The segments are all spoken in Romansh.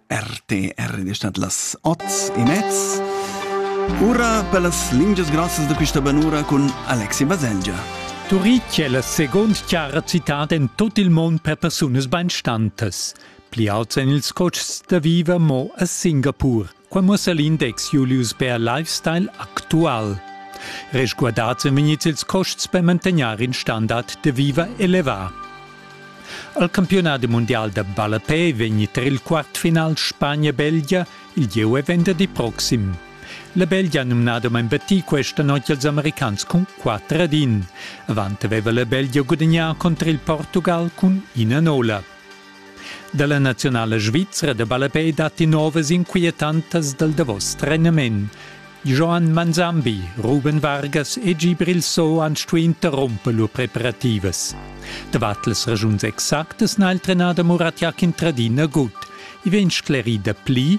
RTR ed stat las oz e mez. Ura per las lingias grossas da questa banura cun Alexi Baselgia. Turitg è la seconda chiara citad en tut il mund per persunas bainstantas. Pli auts en ils cotschs da viver mo a Singapur. Qua muossa l'index Julius Bär Lifestyle actual. Resguardats en vegnits ils costs per mantegnar in standard de viva elevà. Al campionat mondial da ballapè vegni tar il quartfinal Spagna-Belgia il gieu e venderdi proxim. La Belgia ha numnada ma imbattì questa notte als americans con 4 ad 1. Avant aveva la Belgia gudagnà contro il Portugal cun ina nola. Dalla nazionala svizra da ballapei datti novas inquietantas dal davos trenament. Joan Manzambi, Ruben Vargas e Gibril So han stuì interrumper lur preparativas. Davart las ragiuns exactas n'ha il trenader Murat Yakin Tradina gut. I vegn sclerì da pli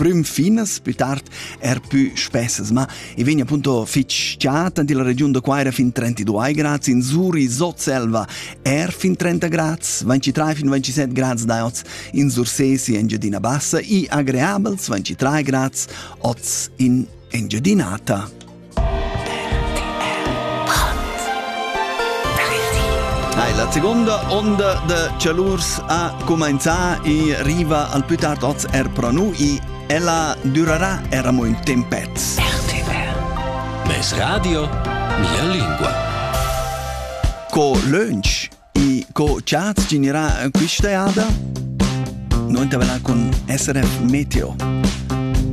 prüm finas pü tard er pü spessas, ma i vegna appunto fich tschat in la regiun da Quaira fin 32 grads, in Zuri, Sotselva er fin 30 grads, 23 fin 27 grads daiots, in Sursesi Engiadina Bassa i agreabels 23 grads, ots in Engiadinata. La seconda onda da Cialurs ha comenzà e riva al più tard oz er pro nu e ella durerà er amo ün tempet. RTR Mes radio, mia lingua. Co lönch E co chats generà questa eada? Noi intervellain cun SRF Meteo.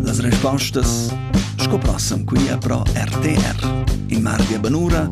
Las respostas sco prossam qui a Pro RTR. In mardi a Banura